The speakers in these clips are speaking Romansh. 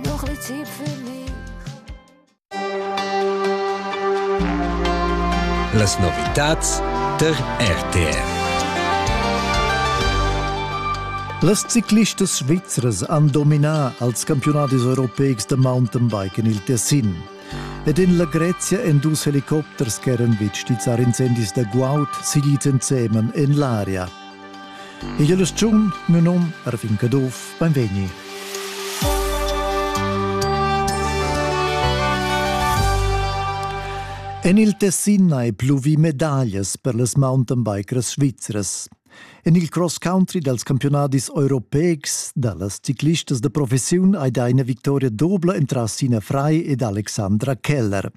Noch ein Tipp für mich. Las novitats der RTR. Las ciclistas svizras han dominà als campionadis europeics da mountainbike en il Tessin. Ed en la Grezia èn dus helicopters ch'eran vegnids a incendis da guaud siglids ensemen en l'aria. Igl ustun, miu num Ervin Caduff, beinvegni. En il Tessin hai pluvi medaglias per las mountainbikers svizras. En il cross country dals campionadis europeics da las ciclistas da professiun hai dà ina victoria dobla entras Sina Frei ed Alexandra Keller.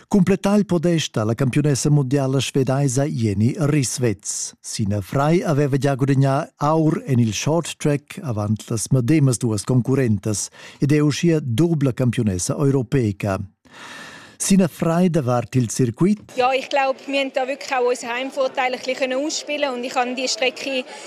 Cumplettà il podest da la campiunessa mundiala svedaisa Jenny Risswetz. Sina Fry aveva gia gudagnà aur en il short track avant las medemas duas concurrentas ed è uschia dubla campiunessa europeca. Sina Frei davart il Circuit? Ja, ich glaube, wir haben da wirklich auch unser Heimvorteil ein bisschen ausspielen und ich habe die Strecke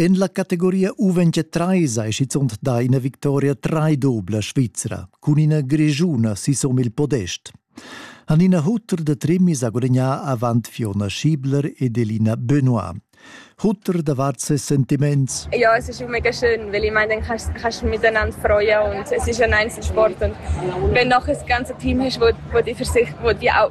En la categoria U20 trais ei schizunt dà ina victoria traidobla svizra cun ina grischuna sisom il podest. Hanina Hutter de Trimmis ha gudagnà avant Fiona Schiebler ed Elina Benoit. Hutter davart ses sentiments. Ja, es ist mega schön, weil ich meine, dann kannst, kannst du miteinander freuen und es ist ein Einzelsport und wenn noch ein ganzes Team hast, wo, wo, die, für sich, wo die auch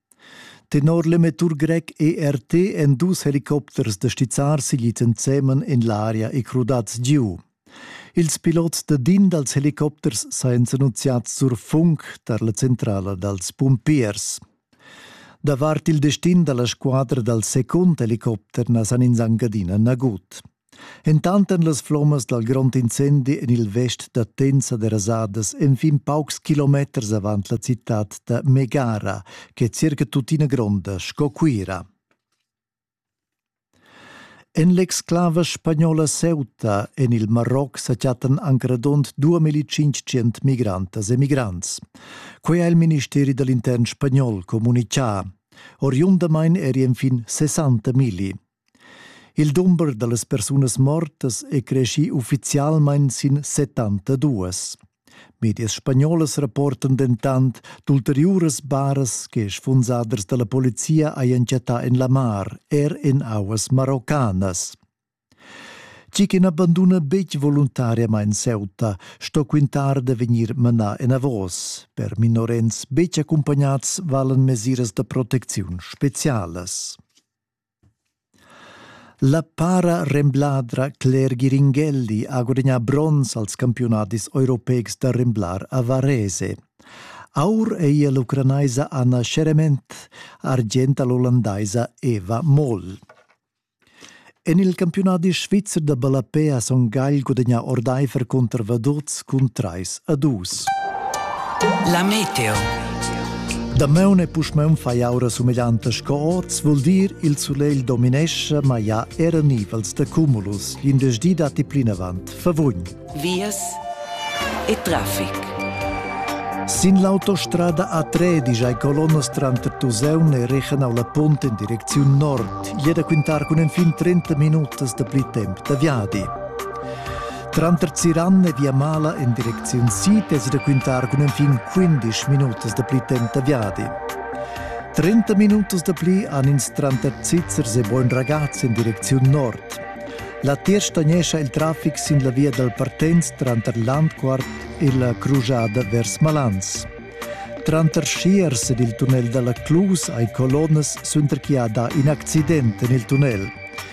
Tenor l'emettur grec ERT èn dus helicopters da stizzar siglits ensemen en l'aria e crudads giu. Ils pilots da DIN dals helicopters sajan s'annunziads sur funk tar la centrala dals pumpiers. Davart il destin da la squadra dal secund helicopter na san ins anc adina nagut. Entanten las flommas dal grond incendi en il vest da Tensa derasadas enfin paucs kilometers avant la citad da Megara, ch'è circa tuttina gronda sco Cuira. En l'exclava spagnola Ceuta en il Maroc sa chattan anc radund 2500 migrantas e migrants. Quai ha il ministeri da l'intern spagnol communitgà. Oriundamain eri enfin 60 migli. Il dumber dallas persunas mortas è creschì uffizialmain sin 72. Medias spagnolas rapportan dentant d'ulteriuras baras che sfunsaders da la polizia hajan chattà en la mar, er en auas maroccanas. Chi che n'abanduna betg voluntariamain Ceuta sto quintar da vegnir manà enavos. Per minorens betg accumpagnats valan mesiras da protecziun specialas. La para-rembladra Claire Giringhelli ha gudagnà bronz als campiunadis europeics da remblar a Varese. Aur è ella l'ucranaisa Anna Scheremet, argenta l'ollandaisa Eva Moll. En il campiunadi svizzer da ballapé ha Son Gagl gudagnà ordaifer cunter Vaduz cun trais a dus. La meteo. Damaun e pusmaun fai aura sumeglianta sco oz, vul dir il sulegl dominesce, ma ja era nivels de cumulus. L'indesch datti plinavant favugn. Vias e traffic. Sin l'autostrada A3 digiai colonnas tranter Tuseun e Rechenau la Pont in direcziun nord, jeda quintar cun enfin 30 minutas da pli temp da viadi. Tranter Ziran e Viamala en direcziun sid es raquintar cun enfin 15 minutas da pli temp da viadi. 30 minutos da pli han ins tranter Zizzers e Buen Ragaz in direcziun nord. La tier stagnescha il traffic sin la via dal Partenz tranter Landquart e la crujada vers Malans. Tranter Schiers ed il tunnel dalla Clus hai colonnas suenter chi ha dà in accident en il tunnel.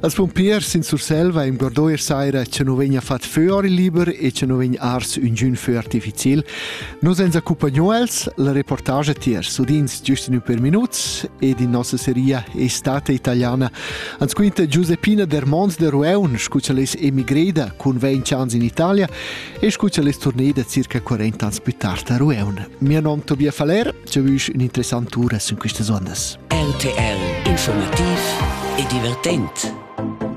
Als pumpiers in Surselva ingordò er saira che nu vegna fat fö ori liber e che nu vegn ars üngün fö artificiel. Nos ens accumpagnò els la reportage tiers udins giust in ün per minuts ed in nossa seria Estate Italiana ans quinta Giuseppina der Mons de Rueun scucha les emigreda cun 20 ans in Italia e scucha les tournée da circa 40 ans più tard a Rueun. Mio nom Tobias Faller giavüsch ün'interessant tura sün quistas ondas. RTL Informativ e divertent.